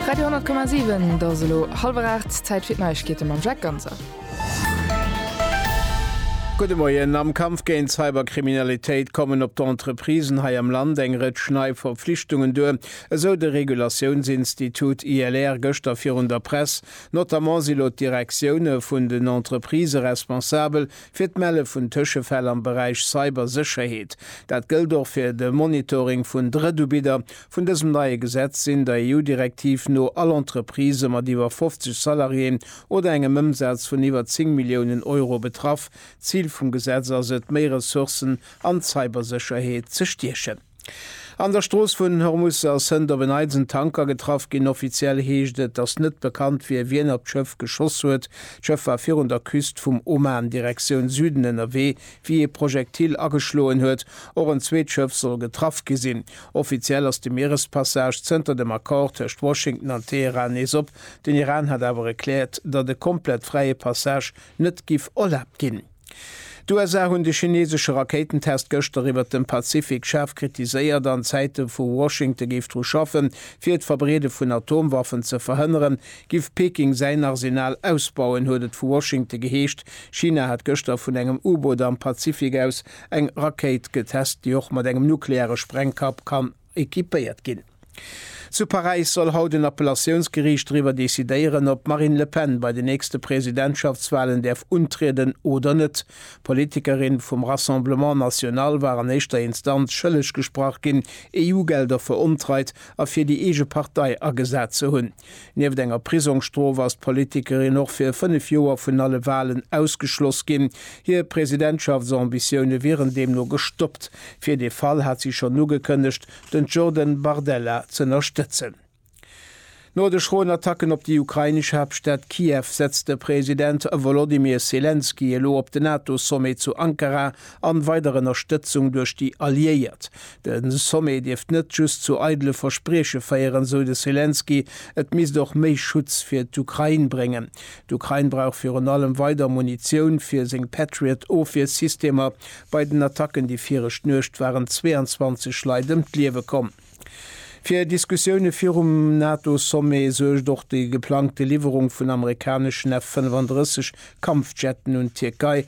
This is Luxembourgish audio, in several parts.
Radio 10,7 Et ass elo hallwer 8, Zäit fir d'Neiegkeete mam Jacques Ganser. Gudde Moien, Am Kampf géint d'Cyberkriminalitéit kommen op d'Entreprisen hei am Land eng Rëtsch nei Verpflichtungen duer, esou de Regulatiounsinstitut ILR gëschter virun der Press. Notamment si lo d'Direktioune vun den Entreprisë responsabel fir d'Melle vun Tëschefäll am Beräich Cybersécherheet. Dat gëllt och fir de Monitoring vun Drëttubidder, Vun dësem neie Gesetz sinn der EU-Direktiv no all Entreprise mat iwwer 50 Salariéen oder engem Ëmsaz vun iwwer 10 Milliounen Euro betraff. D'Zil vum Gesetz ass et, méi Ressourcen an d'Cybersécherheet ze stiechen. An der Strooss vun Hormus ass hënt op en Neits en Tanker getraff ginn. Offiziell heescht et, dass net bekannt wier, wien op d'Schëff geschoss huet. D'Schëff war virun der Küst vum Oman Direktioun Süden ënnerwee, wéi ee Projektil ageschloen huet. Och en zweet Schëff soll getraff gi sinn. Offiziell ass de Mierespassage zënter dem Accord tëscht Washington an Teheran nees op. Den Iran hat awer erkläert, datt e komplett fräie Passage net giff erlaabt ginn. D'USA hunn de chineesesche Rakéitentest gëschter iwwert dem Pazifik schaarf kritiséiert an Zäite wou Washington géif dru schaffen, fir d'Verbreede vun Atomwaffen ze verhënneren, giff Peking säin Arsenal ausbauen, huet et vu Washington geheescht. China hat gëschter vun engem U-Boot am Pazifik aus Eng Rakéit getest, déi och mat engem nukleare Sprengkapp kann equipéiert ginn. Zu Paräis soll haut en Appellatiounsgeriicht driwwer decidéieren, ob d'Marine Le Pen bei den nächste Presidentschaftswalen däerf untrieden oder net. D'Politikerin vum Rassemblement National war an éischter Instanz schëlleg gesprach ginn, EU-Gelder verontreit a fir déi eege Partei agesat ze hunn. Nieft enger Prisongsstrof ass d'Politikerin och fir 5 Joer vun alle Walen ausgeschloss ginn. Hir Presidentschaftsambitioune wieren deemno gestoppt. Fir dee Fall hat si schonn ugekënnegt, den Jordan Bardella z'ënnerstëtzen. No de schroen Attacken op déi ukrainesch Haaptstad Kiew setzt de President Wolodymyr Selenskyj elo op de NATO-Sommet zu Ankara an weider Ënnerstëtzung duerch déi Alliéiert. De Sommet dierft net just zu eidele Versprieche féieren, sou de Selenskyj, et misst och méi Schutz fir d'Ukrain bréngen. D'Ukrain brauch virun allem weider Munitioun fir seng Patriot-Ofwiersystemer. Bei den Attacken déi viregt Nuecht waren 22 Leit ëm d'Liewe komm. Fir Diskussioune virum NATO-Sommet suergt och déi geplangte Liwwerung vun amerikaneschen F-35 Kampfjetten un d'Tierkei.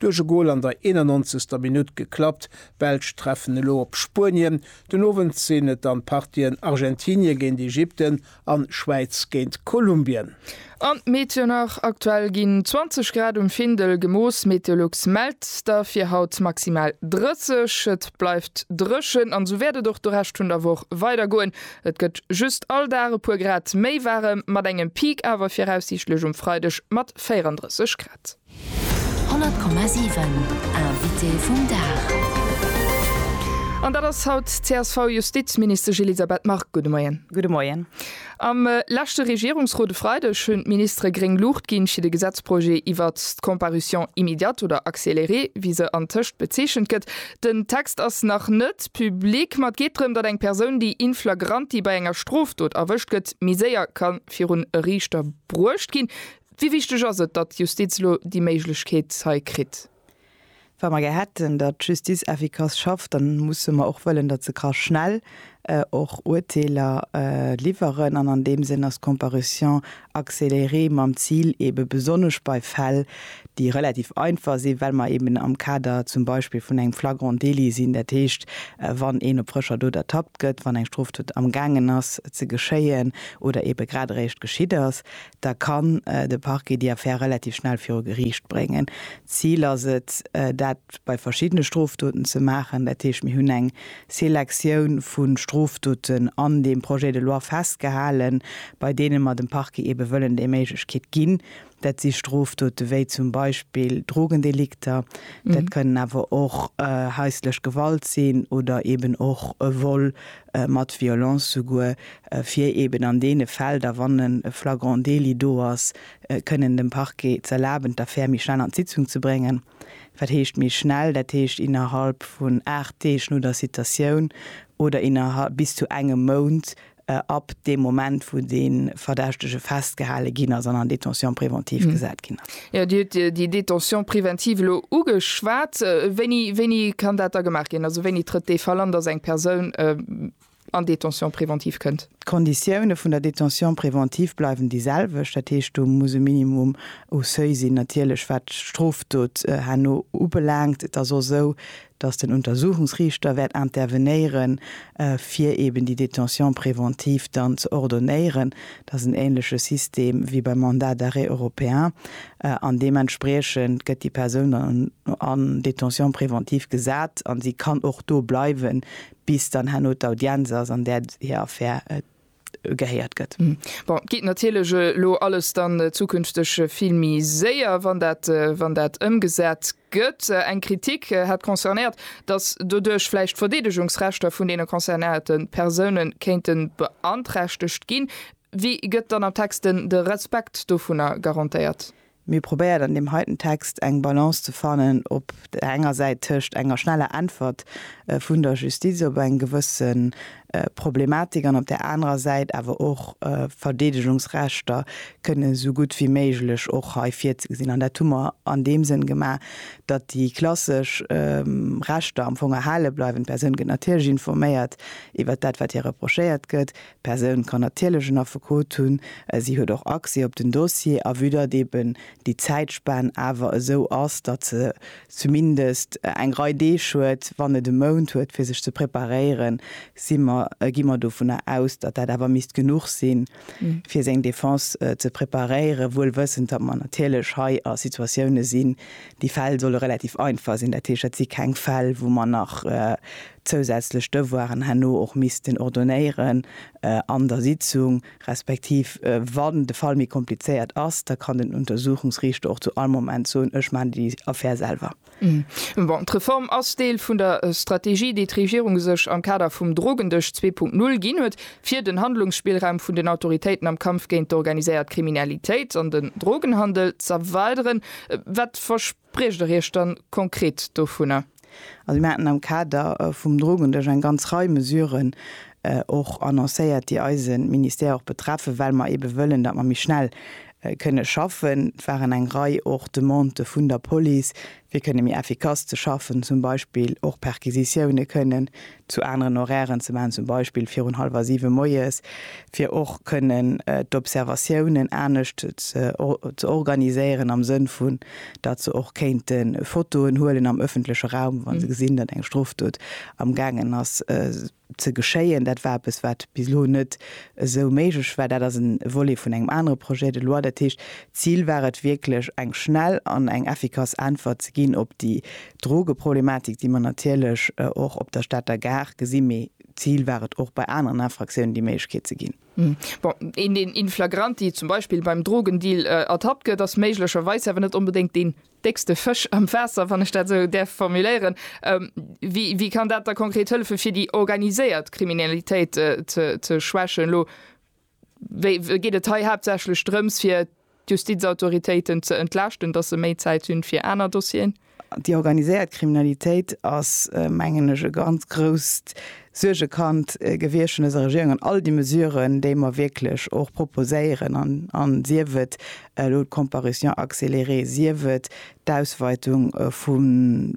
Duerch e Gol an der 91. Minutt geklappt. D'Belsch treffen elo op Spuenien. Den Owend sinn et dann d'Partien Argentinie géint Ägypten an Schwäiz géint Kolumbien. An d'Meteo nach, Aktuell ginn 20 Grad um Findel gemooss. Meteolux mellt der fir haut maximal 30. Et bleift dréchen an esou wäert et och de Rescht vun der Woch weider goen. Et gëtt just all Dag e puer Grad méi waarem, mat engem Peak awer viraussiichtlech um Freideg mat 34 Grad. 100,7 Invité vum Dag An dat ass haut d'CSV-Justizministesch Elisabeth Margue. Gudde Moien. Gudde Moien. Am leschte Regierungsrot e Freideg hunn d'Ministere gréng Luucht ginn, fir de Gesetzprojet iwwert d'Comparution immédiate oder accélérée, wéi se antëscht bezeechent gëtt. Den Text ass nach net public, ma et geet drëm, datt eng Persoun, déi in flagranti bei enger Strofdot erwëscht gëtt, méi séier ka virun e Riichter bruecht ginn. Wéi wichteg ass et, datt d'Justiz elo déi Méiglechkeet hei kritt? Wa mer gär hätten, datt d'Justiz effikass schafft, da musse mer och wëllen, datt se ka schnell och Urteeler liwweren. An an deem Sënn ass d'Comparution accélérée mam Zil, eebe besonnesch bei Fäll, déi relativ einfach sinn, well mer eeben am Kader zum Beispill vun engem flagrant délit sinn, dat heescht, wann een op frëscher Dot ertappt gëtt, wann eng Strofdot amgaangen ass ze geschéien oder eebe grad eréischt geschitt ass, da kann de Parquet déi Affär relativ schnell viru Geriicht bréngen. D'Zil ass et, dat bei verschiddene Strofdoten ze maachen. Dat heescht, mir hunn eng Selektioun vu Strofdoten an deem Projet de loi festgehalen, bei deene mer dem Parquet eebe wëllen déi Méiglechkeet ginn. Dat si Strofdote wéi zum Beispill Drogendelikter, dat kënnen awer och haislech Gewalt sinn oder eeben och e Vol mat Violence souguer, fir eben an deene Fäll da wann e flagrant délit do ass, kënnen dem Parquet z'erlaben d'Affär méi schnell an d'Sitzung ze bréngen. Wat heescht méi schnell? Dat heescht innerhalb vun 8 Deeg no der Citatioun oder innerhalb bis zu engem Mount ab deem Moment wou dee Verdächtege festgehale ginn ass an an Détention préventive gesat ginn ass. Jo, Dir hutt déi Détention préventive elo ugeschwat. Wéini, wéini kann dat da gemaach ginn? Also wéini trëtt dee Fall an, dass eng Persoun an Détention préventive kënnt? D'Konditioune vun der Détention préventive bleiwen déi selwecht. Dat heescht, do muss e Minimum u Seuil sinn. Natierlech, wat d'Strofdot herno ubelaangt, et ass och esou, dass den Untersuchungsriichter wäert intervenéieren, fir eben déi Détention préventive dann ze ordonnéieren, dass en ähnleche System wéi beim Mandat d'arrêt européen, an deementspriechend gëtt déi Persoun dann en Détention préventive gesat a si kann och do bleiwen, bis dann herno d'Audienz ass, an där hir Affär gehéiert gëtt. Bon, et geet natierlech elo alles dann zukünfteg vill méi séier, wann dat, wann dat ëmgesat gëtt. Eng Kritik hat concernéiert, datt doduerch vläicht d'Verdeedegungsrechter vun deene concernéierte Persoune kéinte beanträchtegt ginn. Wéi gëtt dann am Text de Respekt dovunner garantéiert? Mir probéiert an deem heiten Text eng Balance ze fannen op där enger Säit tëscht enger schneller Äntwert vun der Justiz op eng gewësse Problematik an op där anerer Säit awer och Verdeedegungsrechter kënnen esou gutt wéi méiglech och hei virzegesinn. An dat hu mer an deem Sënn gemaach, datt déi klassesch Rechter am Fong erhale bleiwen. D'Persoun gëtt natierlech informéiert iwwert dat, wat hir reprochéiert gëtt. D'Persoun kann natierlech en Affekot hunn, si huet och Accès op den Dossier a vue datt eben déi Zäitspan awer esou ass, datt se zumindest eng Rei Deeg huet, wann net e Mount huet, fir sech ze preparéieren, si mer, gi mer dovunner aus, datt dat awer misst genuch sinn, fir seng Defense ze preparéieren, wuel wëssend, datt mer natierlech hei a Situatioune sinn, déi Fäll solle relativ einfach sinn, dat heescht, dat si keng Fäll, wou mer nach zousätzlech Devoiren herno och missten ordonnéieren an der Sitzung, respektiv wann de Fall méi komplizéiert ass, da kann den Untersuchungsriichter och zu all Moment soen, ech maachen déi Affär selwer. Bon, d'Reform ass Deel vun der Strategie, déi d'Regierung sech am Kader vum Drogendësch zwee Punkt null ginn huet, fir den Handlungsspillraum vun den Autoritéiten am Kampf géint d'organiséiert Kriminalitéit an den Drogenhandel z'erweideren. Wat verspritt Briecht Der Iech dann konkret dovunner? Also mir haten am Kader vum Drogendësch eng ganz Rei Mesuren och annoncéiert, déi eise Ministère och betreffen, well mer eebe wëllen, datt mer méi schnell kënne schaffen. Et waren eng Rei och Demandë vun der Police, fir kënne méi effikass ze schaffen, zum Beispill och Perquisitioune kënnen zu aneren Horairen ze maachen, zum Beispill virun hallwer siwe moies, fir och kënnen d'Observatiounen anescht ze organiséieren, am Sënn vun, datt se och kéinte Fotoen huelen am ëffentleche Raum, wa se gesinn, datt eng Strofdot amgaangen ass ze geschéien. Dat war eppes, wat bis elo net esou méiglech war. Dat ass e Volet vun engem anere Projet de loi. Dat heescht, d'Zil war et wierklech, eng schnell an eng effikass Äntwert ze ginn op déi D'Drogeproblematik, déi mer natierlech och op der Stater Gare gesinn, mee d'Zil war et och bei aneren Infraktiounen déi Méiglechkeet ze ginn. Bon, een deen in flagranti zum Beispill beim Drogendeal ertappt gëtt, ass méiglecherweis awer net onbedéngt deen déckste Fësch am Waasser, wann ech dat esou däerf formuléieren. Wéi kann dat da konkret hëllefen, fir déi organiséiert Kriminalitéit ze schwächen? Geet et hei haaptsächlech drëms, fir d'Justizautoritéiten ze entlaaschten, datt se méi Zäit hunn, fir aner Dossieren? Déi organiséiert Kriminalitéit ass, mengen ech, e ganz grousst Suergekand gewiescht vun dëser Regierung. An all déi Mesuren, déi mer wierklech och proposéieren, sief et elo d'Comparution accélérée, sief et d'Ausweitung vu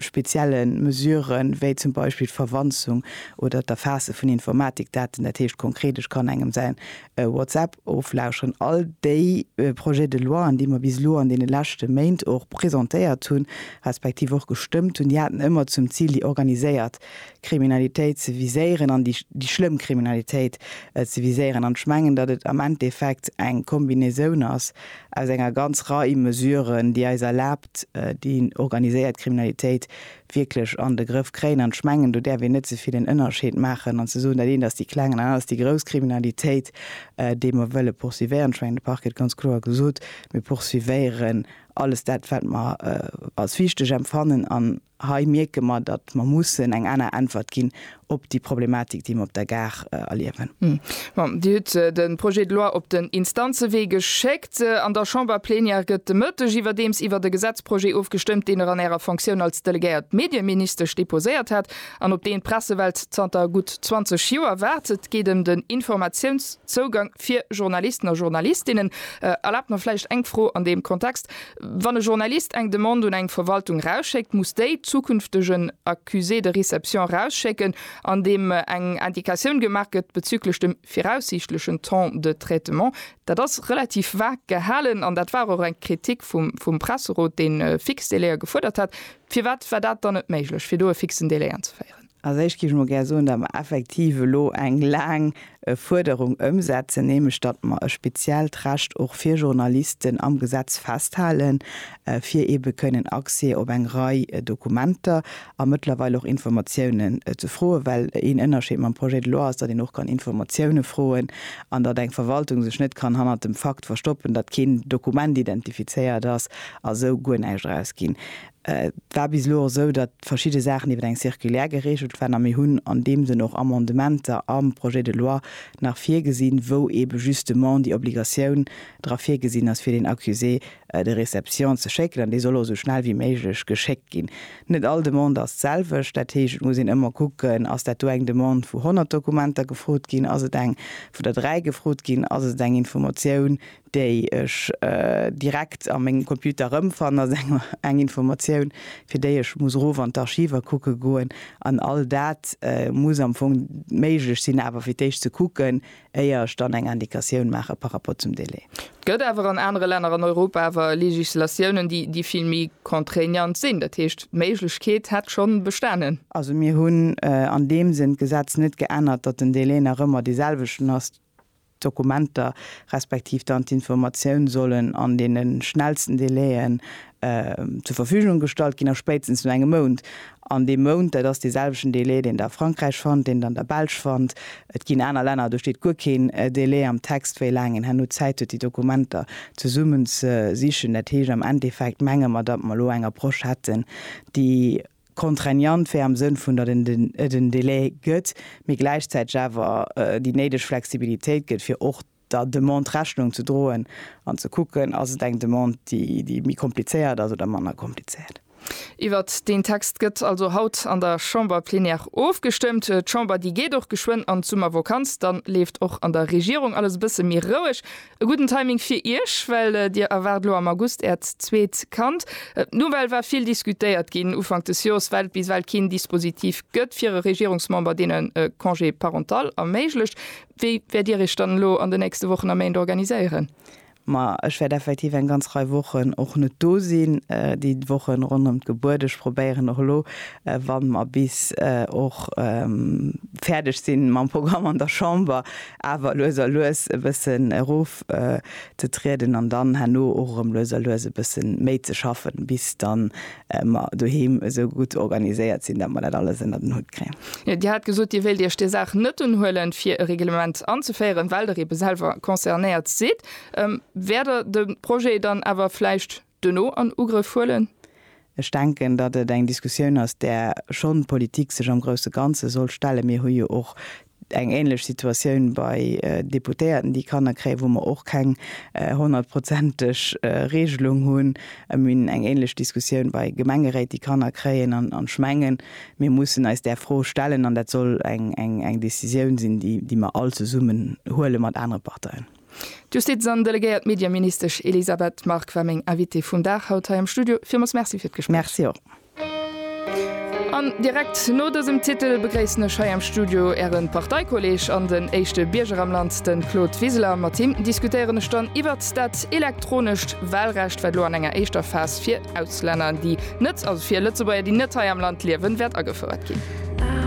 spezielle Mesurë wéi zum Beispill d'Verwanzung oder d'Erfaasse vun Informatikdaten, dat heescht konkret, ech kann engem säin WhatsApp oflauscheren, all déi Projets de loien, déi mer bis elo an deene leschte Méint och presentéiert hunn, respektiv och gestëmmt hunn, déi haten ëmmer zum Zil, déi organiséiert Kriminalitéit ze viséieren an déi schlëmm Kriminalitéit ze viséieren. An ech mengen, datt et am Endeffekt eng Kombinaison ass, aus enger ganz Rei Mesuren, déi eis erlaabt, déi organiséiert Kriminalitéit wierklech an de Grëff kréien. An ech mengen, do däerf een net ze vill en Ënnerscheed maachen an ze soen, dat eent ass déi kleng an dat aner ass déi grouss Kriminalitéit, déi mer wëlle poursuivéieren. Ech mengen, de Parquet huet ganz kloer gesot, Mir poursuivéieren alles dat, wat mer als wichteg empfannen an, Hei mierke mer, datt mer mussen eng aner Äntwert ginn op déi Problematik, déi mer op der Gare erliewen. Bon, Dir hutt de Projet de loi op den Instanzewee geschéckt. An der Chamberplenière gëtt de Mëtteg iwwerdeems iwwert e Gesetzprojet ofgestëmmt, deen Der an Ärer Fonctioun als delegéiert Medieministesch deposéiert hat an op deen d'Pressewelt zanter gutt 20 Joer waart. Et geet ëm den Informatiounszougang fir Journalisten a Journalistinnen. Erlaabt mer vläicht eng Fro an deem Kontext. Wann e Journalist eng Demande un eng Verwaltung erausschéckt, muss déi zukünftegen Accusé de réception erausschécken, an deem eng Indicatioun gemaach gëtt bezüglech dem viraussiichtlechen Temps de traitement. Dat ass relativ vag gehalen an dat war och eng Kritik vum Presserot, dee fix Délaië gefuerdert hat. Firwat war dat dann net méiglech, fir do e fixen Délai anzeféieren? Als éischt géif ech mol gär soen, datt mer effektiv elo eng laang Fuerderung ëmsetzen, nämlech datt mer e speziellt Recht och fir Journalisten am Gesetz festhalen, fir eebe kënnen Accès op eng Rei Dokumenter a mëttlerweil och Informatiounen ze froen. Well een Ënnerscheed mam Projet de loi ass, datt een och kann Informatioune froen an datt eng Verwaltung sech net kann hannert dem Fakt verstoppen, datt keen Dokument identifizéiert ass a sou guer näischt erausginn. Et war bis elo och esou, datt verschidde Saachen iwwer eng Circulaire geregelt waren a mir hunn an deem Sënn och Amendementer am Projet de loi nach virgesinn, wou eebe justement déi Obligatioun dra virgesinn ass, fir deen Accusé de réception ze schécken. An dee soll och esou schnell wéi méiglech geschéckt ginn. Net all Demande ass d'selwecht. Dat heescht, et muss een ëmmer kucken, Ass dat do eng Demande, wou 100 Dokumenter gefrot ginn? Ass et eng, wou der dräi gefrot ginn? Ass et eng Informatioun, déi ech direkt a mengem Computer erëmfannen, ass eng Informatioun, fir déi ech muss erof an d'Archiver kucke goen. An all dat muss am Fong méiglech sinn, awer fir d'éischt ze kucken, éier ech dann eng Indikatioun maache par rapport zum Délai. Et gëtt awer an anere Länner an Europa awer Legislatiounen, déi vill méi contraignant sinn. Dat heescht, d'Méiglechkeet hätt scho bestanen. Also mir hunn an deem Sënn d'Gesetz net geännert, datt den Délai nach ëmmer deeselwechten ass. d'Dokumenter respektiv dann d'Informatioun sollen an deene schnellsten Délai'en zur Verfügung gestallt ginn, a spéitstens no engem Mount. An dee Mount, dat ass deeselwechten Délai, deen Der a Frankräich fannt, deen Der an der Belsch fannt. Et ginn aner Länner, do steet guer keen Délai am Text, wéi laang een herno Zäit huet, déi Dokumenter zesummen ze sichen. Dat heescht am Endeffekt menge mer, datt mer elo eng Approche hätten, déi, contraignant wär am Sënn vun, datt et en Délai gëtt, mee gläichzäiteg awer déi néideg Flexibilitéit gëtt, fir och der Demande Rechnung ze droen an ze kucken, ass et eng Demande, déi méi komplizéiert ass oder manner komplizéiert. Iwwert deen Text gëtt also haut an der Chamber plénière ofgestëmmt. D'Chamber, déi geet och geschwënn an d'Summervokanz. Dann leeft och an der Regierung alles e bësse méi roueg. E gudden Timing fir Iech, well Dir erwaart elo am August Äert zweet Kand. D'Nouvelle war vill diskutéiert ginn Ufank des Jors, well et bis ewell keen Dispositif gëtt fir e Regierungsmember, deen e Congé parental erméiglecht. Wéi wäert Dir Iech dann elo an den nächste Wochen a Méint organiséieren? Ma ech wäert effektiv eng ganz Rei Wochen och net do sinn. Déi Woche ronderëm d'Gebuert, ech probéieren och elo, wa mer bis och fäerdeg si mam Programm an der Chamber, awer lues a lues e bëssen erof ze trieden an dann herno och erëm lues a lues e bëssen méi ze schaffen, bis dann mer doheem esou gutt organiséiert sinn, datt mer dat alles ënnert en Hutt kréien. Dir hat gesot, Dir wéilt Iech där Saach net unhuelen, fir e Reglement anzeféieren, well Der eebe selwer concernéiert sidd. Wäert Der de Projet dann awer vläicht Duerno an Ugrëff huelen. Ech denken, datt et eng Diskussioun ass, där schonn d'Politik sech am grousse Ganze soll stellen. Mir hu jo och eng änlech Situatioun bei Deputéierten, déi Kanner kréien, wou mer och keng honnertprozenteg Regelung hunn. Mir hunn eng änlech Diskussioun bei Gemengeréit, déi Kanner kréien. An ech mengen, mir mussen eis där Fro stellen, an dat soll eng Décisioun sinn, déi mer all zesummen huele mat anere Parteien. D'Justiz an delegéiert Medieministesch Elisabeth Margue war meng Invitée vum Dag haut hei am Studio. Villmools Merci fir d'Gespréich. Merci och. An direkt no dësem Titel begréissen ech hei am Studio Äre Parteikolleeg an den éischte Bierger am Land, de Claude Wiseler. Mat him diskutéieren ech dann iwwert dat elektronescht Wahlrecht, wat elo an enger éischter Phas fir Auslänner, déi net, also fir Lëtzebuerger, déi net hei am Land liewen, wäert agefouert ginn.